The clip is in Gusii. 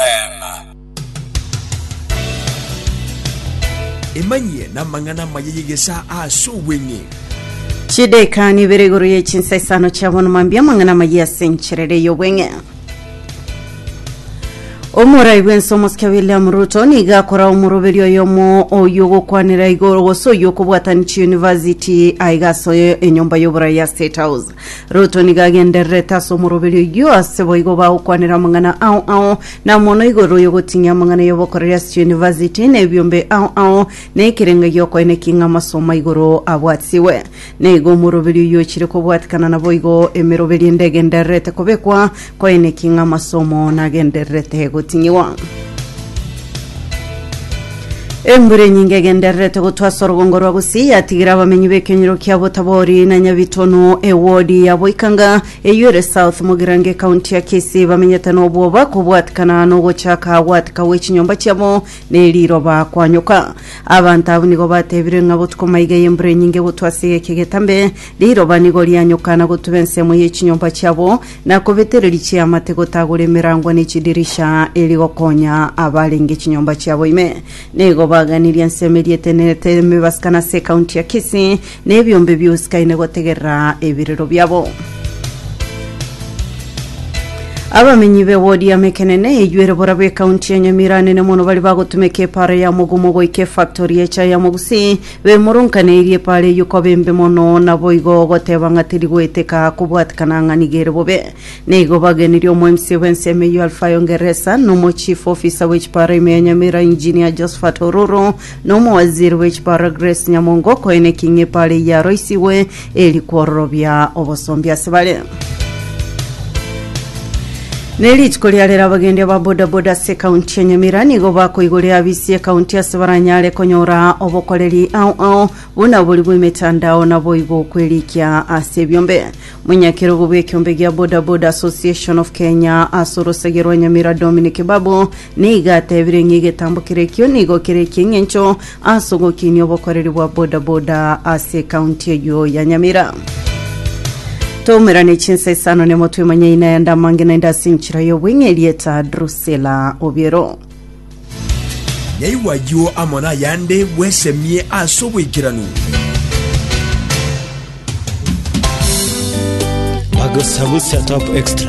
Amen. Emanyie namang'ana amaya y'egesaa ase obweng'e. Chideka ni ibere igoro ye chinsa isano chia bono mambia amang'ana amaya ase encherere y'obweng'e. Omorai bwense omosike William Ruto niga akora omoroberio oyomo oyo ogokwanera igoro gose oyo okobwatani chiuniversity aiga ase enyomba y'oborai ya State House. Ruto nigo agendererete ase omoroberi oyio, ase boigo bagokwanera amang'ana ao ao, na mono igoro y'ogotinyia amang'ana y'obokoreri ase chiyunivasiti, na ebiombe ao ao, na ekerengo gi'okoeneki ng'a amasomo a igoro abwatigwe. Na igo omoroberi oyio ochire kobwatikana naboigo emeroberi ende egendererete kobekwa, Koine ki ng'amasomo nagendererete gotinyigwa? Embura enyinge egendererete gotwa ase orogongo rwa Gusii yatigire abamenyi b'ekenyoro kia Botabori na Nyabitono ewodi ya Boikanga eyio ere South Mugirango ekaunti ya Kisii bamenyete nobwoba kobwatikana nogochaka gwatika gwechinyomba chiabo neriroba kwanyoka. Abanto abwo nigo batebire ng'a botuko maiga y'embura enyinge gotwa ase egeke egetambe riroba nigo rianyoka na gotuba ensemo y'echinyomba chiabo na kobetereria chiamate gotagora emerango ne chidirisha eri gokonya abarenge chinyomba chiabo ime. Nigo baganirie ensemo eria etenenete emebaskan ase ekaunti ya Kisii, na ebiombe biusikaine gotegerera ebirero biabo. Abamenyi be wodi ya Mekenene eyuere borabu ekaunti ya Nyamira nene mono bari bagotumeka epaara ya mogumo goika efactori y'echae ya Mogusii Bemoronkaneirie pare eyio koba embe mono, naboigo goteba ng'a teri goeteka kobwatikana ng'a nigo ere bobe. Neigo bagenirie omoemisia bw'ensemo eyio Alfayo Ngeresa, na omochief officer bwe chipara ime ya Nyamira Engineer Josphat Oruru, na omowaziri bwe chipara Grace Nyamongo, koeneki ng'a epara eyio yaroisigwe Eri kwororobia obosombi ase bare. Ne rituko ria rero abagendi aba bodaboda ase ekaunti ya Nyamira nigo bakoigoria abisi ekaunti ase baranyare konyora obokoreri ao ao buna obori bw'emetandao naboigo kwerikia ase ebiombe. Monyakerogo bw'ekiombe gia Bodaboda Association of Kenya ase orosagia rwa Nyamira Dominic Babu Nigo atebire ng'a egetambo kere ekio nigo kere eki'engencho ase ogokinia obokoreri bwa boda boda ase ekaunti eyio ya Nyamira. Toumerane chinsa isano nemotwe emanyaine ayande amange naende ase enchera y'obweng'e erieta Drusilla Obiero. Nyaigwa ayio amo nayande bwesemie ase oboikeranu. Bagusa Gusa Top Extra